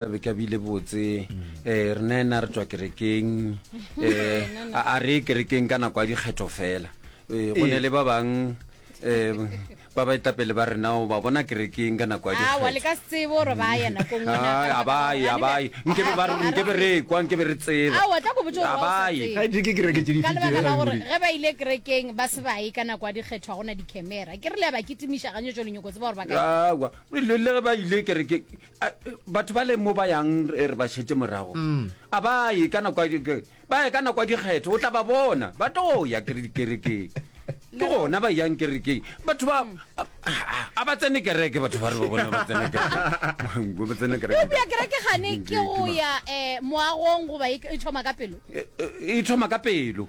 be ka bile botse um re na ena re tswa kerekeng um a re ye kerekeng ka nako ya dikgetho fela um go ne le ba bang um ba ba etapele ba rena o ba bona kerekeng ka nako ya dikgethoabaye nkebe ba nkebe re kwa nkebe re tsebabayegebailekerekengge ba ile kerekeng ba se ba ye ka nako ya dikgetho ga gona dicamera ke re le ya ba kitimiša ganyetso lenyoko tseba gore ba ka le ge ba ile kerekeng A- batho ba leng mo ba yang re re ba šetse morago a ba ye ka nako ya di- ke- ba ye ka nako ya dikgetho o tla ba bona ba tlo ya kere dikerekeng ke gona ba yang kerekeng batho ba a- a- a ba tsene kereke batho ba re ba bona ba tsene kereke ba tsene kereke eupša kereke gane ke go ya um moagong goba e e thoma ka pelo E- e e thoma ka pelo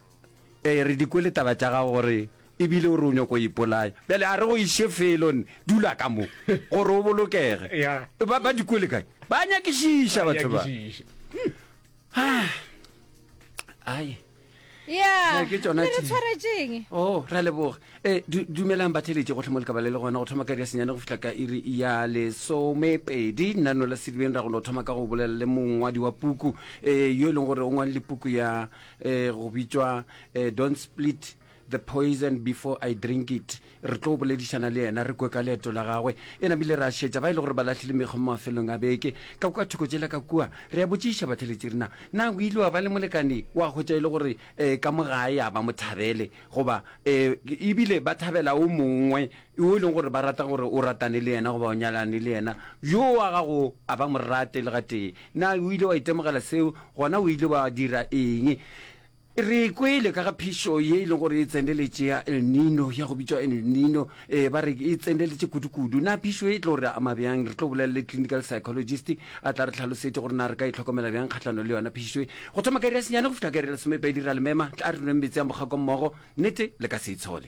Ee, re di kwele taba tša gago gore e bile o re o nyoko o ipolaya. Bjale a re go iše felo, nne, dula ka mo, gore o bolokege. Ba, ba di kwele kae? Ba nyakišiša batho ba. Ah, ai. Ya, Ee, ke tšona le re tše. tshwaretšeng? O, Oh, ra leboga. E, du, dumelang batheletše gohle mo lekaba le le gona go thoma ka iri ya senyane go fihla ka iri ya lesomepedi. Nna Nola Sedibeng ra go no thoma ka go bolela le mongwadi wa puku e, yo e leng gore o ngwalile puku ya eh, go bitšwa eh, don't split the poison before i drink it re tlo boledišana le yena re kwe ka leeto la gagwe e namile ra šetša ba e le gore ba lahlile mekgwa mo mafelong a beke ka kwa thoko jela ka kua re ya botšiša batheletši rena na o ile wa ba le molekane wa kgotša e le gore um ka mo gae a ba mo thabele goba um ebile ba thabela o mongwe Yo e lego gore ba rata gore o ratane le yena goba o nyalane le yena, yo wa gago a ba mo rate le gatee. Na o ile wa itemogela seo, gona o ile wa dira eng? Re kwele ka ga phišo ye e lego gore e tseneletše ya El Nino, ya go bitšwa El Nino. Ee, ba re e tseneletše kudu-kudu. Na phišo ye e tlo re ama bjang? Re tlo bolela le clinical psychologist a tla re hlalosetša gore na re ka itlhokomela bjang kgahlanong le yona phišo ye. Go thoma ka iri ya senyane go fihla ka iri ya lesomepedi, re a le mema, tla re nweng meetse a mokgako mmogo, nnete le ka se e tshole.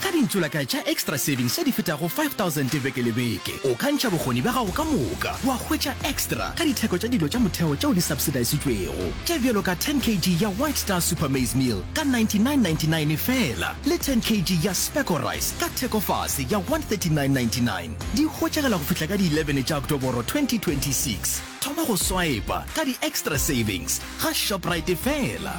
Ka dintsulakae tša Extra Savings tše di fetago 5000 beke le beke, o ka ntšha bokgoni bja gago ka moka wa hwetša Extra ka ditheko tša dilo tša motheo tšeo di subsidisitšwego, tše bjalo ka 10 kg ya White Star Super Maize Meal ka 99.99 feela le 10 kg ya Specco Rice ka thekofase ya 139.99. Di hwetšagela go fihla ka di 11 tša Oktoboro 2026. Thoma go swaepa ka di Extra Savings ga Shoprite feela.